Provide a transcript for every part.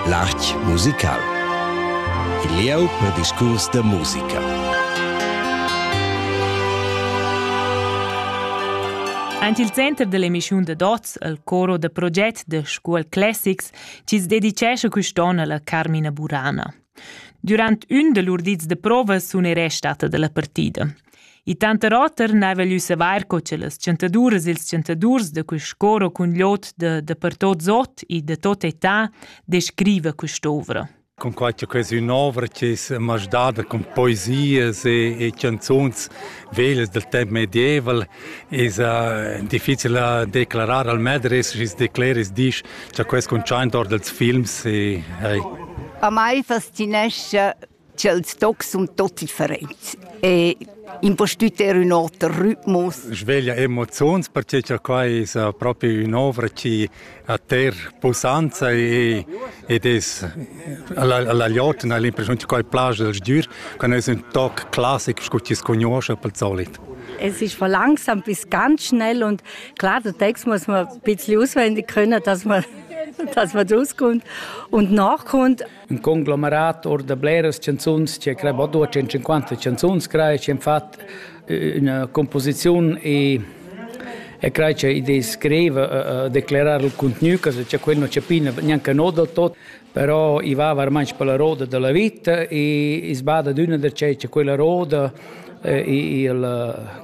L'art musical. Il lieu per discurs da musica. Ant il center dell'emissiun da Dots, il coro da proget da Scuol Classics, ci dedicesce quest'onn alla Carmina Burana. Durant ün da lur dis da prova sun ei restada dalla partida. I tanter oter n'haiva gnü savair co cha las chantaduras e ils chantadurs da quist cor o cun l'ot da da per tot Zot e da tot età descriva quest'ovra. Cunquai cha questa è ün'ovra chi's m'ha dada cun poesias e e chanzuns vegl del temps medieval esa difficil a declarar al medres sch's decleris disch cha quels cuntschaint or dels films e hey. A mai fascinescha ch'els tocs sun tot differents e impostüter ün oter rhythmus. Sveglia emoziuns perche cha quai esa propi ün'ovra chi a ter pussanza e ed es alla alla gliotten hai l'impressiun che quai plaja al sgür, quando es ün toc classic scu chi scugnuoscha pel solit. Es ist von langsam bis ganz schnell und klar, der Text muss man ein bisschen auswendig können, dass man dass man rauskommt und nachkommt. in conglomerat or da bleras canzuns che crei bod 250 canzuns crei che fat eh, una composizione e e crai che idee scrive uh, declarar il contenuto che c'è quello c'è pina neanche no del tot però i va veramente per la roda della vita e sbada d'una da c'è quella roda eh, e il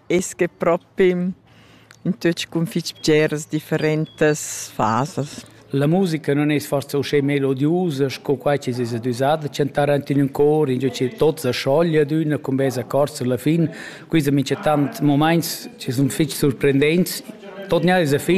es que propi in tuot cun fich bgeras differentas fasas. La musica non es forsa uschè melodiusa sco quai chi es düsà da chantar aint in ün cor, ingio chi tot sa scioglia d'üna cun bels accords sulla fin. Quista minchatant momaints chi sun fich surprendents. Tot gnà es a fin